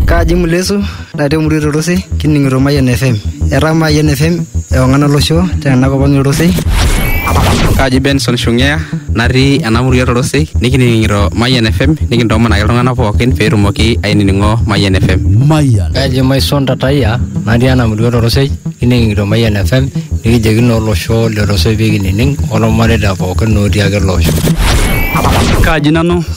Kaji Mulesu natii emurua Torosei kining'ito Mayian FM. Etaa Mayian FM ewang'an olosho tena kop ang' Torosei. Kaji Benson Shungea natii ena murua Torosei nikining'ito Mayian FM nikintoomonaki iltung'anak pookin pee etumoki ainining'o Mayian FM. Mayian. Kaji Maison Tatayia natii ena murua Torosei kining'ito Mayian FM nikijoki naa olosho le Torosei pee kinining' olmareita pookin otii ake ele osho. Kaji nanu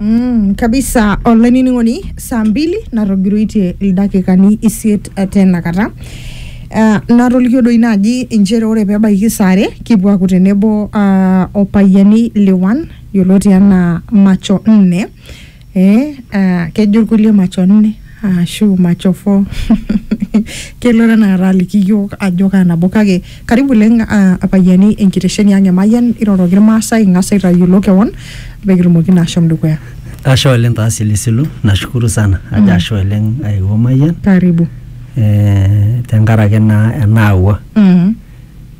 Mm, kabisa olainining'oni saa mbili natogiroitie ildakikani isiet eh, tenakata uh, natolikio doi naaji inchere ore pebaiki saa are kipuo aaku tenebo uh, opayiani liwan yioloti anaa macho nne eh, uh, kejo irkulie macho nne Ashu machofo kelo tenakata aliki iyiook ajo kaa nabo kake karibu oleng ah, apayiani enkitesheni ang e Mayian iroroki irmaasai ing'as aitayiolo kewon pee kitumoki naa ashom dukuya. Ashe oleng taa silisilu, nashukuru sana ajo ashe oleng aewuo Mayian Karibu. eh, tenkaraki naa enaawua. Mhm,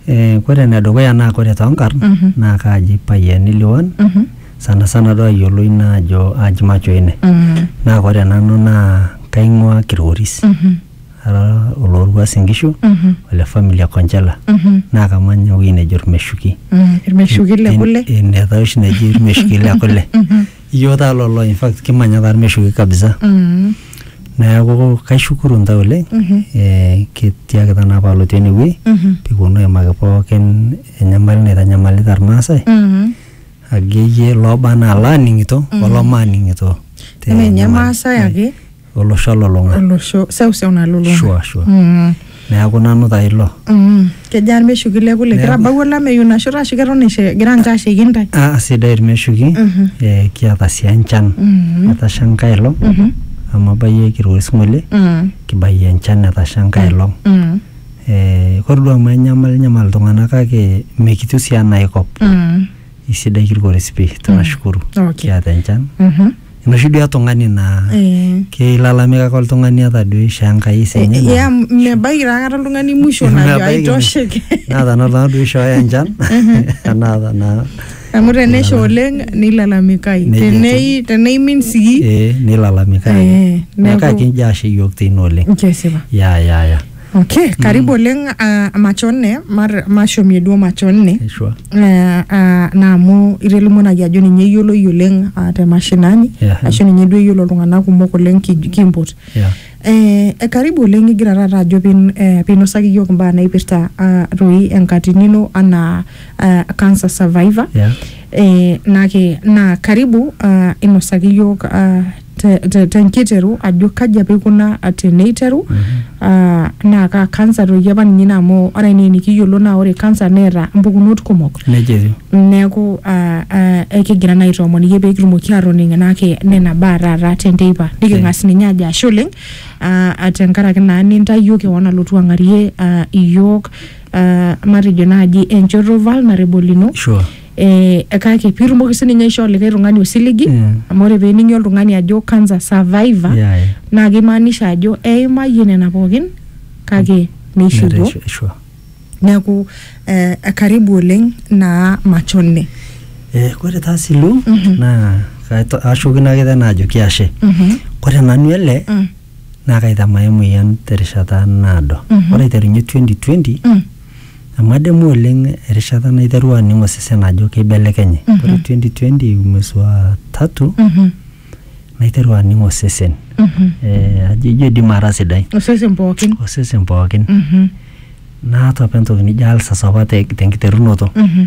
Eh, kore enedukuya naa kore toonkarn Mhm. naa kaaji Payiani Liwuan mhm, sana sana duo ayiolou ina ajo aji macho ine Mm. naa ore nanu naa kaing'ua kirgoris Mhm. ara olooruas inkishu Mhm. ole famili e konchela Mhm. naa kamanya ewueji nejo irmeshuki Mm. irmeshuki le kule inetaa oshi neji irmeshuki le kule Mhm. iyioo taa lolo in fact kimanya taa irmeshuki kabisa Mm. neeku kaishukuru ntae oleng Mhm. eh, kitiakita naa paalotu enewueji Mhm. pekiponu aimaki pookin enyamali naitanyamalita irmaasai Mhm. akeyie looba anaa laaning'ito olomaaning'ito te Eme ninye nyamali. Maasai ake olosho olulung'a olosho seuseu nalulung'a. Sure, sure. Mm, neeku nanu taa ilo mm. Kejaa irmeshuki le kule? Neeku- Kitabawua olameyu ina shoto ashu keton ishe- egira ninche aasheiki intae? Ah, sidai irmeshuki Mhm. eh, kiata sii enchan Mhm. etasha enkae olong Mhm. amu abayie kirua osingolie Mm, kibayie enchan etasha enkae olong mm. Ee ore duo amu enyamal nyamal iltung'anak kake mekitiu sii enaa aikop Mm. isidai kilgoris pii tunashukuru Okay. kiata enchan Mhm. enoshi duo etung'ani naa Eh. keilalamika ake oltung'ani ata duo ishoo Enkai sii ninye naa- ya mebaiki taa kata oltung'ani musho najo Mebaiki. aitosheke naa tenaa oltung'ani duo ishooyo enchan enaa tenaa amu tenesha oleng nilalamikai Nejia etiu. tenei teneimin sii ee nilalamika Eh, neeku- kake injo ashe iyiook teine oleng kesipa ya ya ya okay karibu oleng ah, macho nne mar- mashomie duo macho nne Eshua. Eh, ah, na amu itelimonaki ajo ninye eyioloi oleng ah, te mashinani Yeah. ashu ninye duo eyiolo iltung'anak kumok oleng ki- kimpot Yeah. Eh, eh, karibu oleng igira taata ajo pin- eh, pinosaki iyiok imbaa naipirta ah, toi enkatini ino anaa ah, cancer survivor Yeah. eh, nake naa karibu ah, inosaki iyiok ah, tenkiteru ajo kaji apa ikuna teneiteru ah, naa kaa kansa toki apa ninye ina amu ore enaa enikiyiolo naa ore kansa neeta mpukunot kumok Nejia etiu. neeku ah, ah, ekigira naa aitoomon iyie pee kitumoki aatoning enaki nena baa taata tenteipa niking'as ninye ajo ashe oleng ah, ah, tenkaraki naa nintayio kewon alotu ang'arie ah, iyiook ah, matejo naaji enchoto vulnerable ino Sure. eh, kake piitumoki sininye aishoo likae tung'ani osiligi Mm. amu ore peening'i oltung'ani ajo cancer survivor Yeah, yeah. naa keimaanisha ajo eimayie nena pookin kake neishiwuo Nereisho- isho. neeku eh, karibu oleng naa machone Eh, Kore taa silu Mhm. naa kaito- ashukokino ake tena ajoki ashe. Mhm, Kore nanu ele mm, naa kaitamae emoyian terishata naado. Mhm. Ore aiterunye 2020 mm, Amu adamu oleng erishata naiterua aning osesen ajo keibelekenye. Mm -hmm. Ore 2020 mwezi wa tatu mm -hmm. naiterua aning osesen mm -hmm. eh, ajo ijo idim ara sidai osesen pookin osesen pookin mm -hmm. naata apa entoki nijo alsas apa te, tenkiterunoto mm -hmm.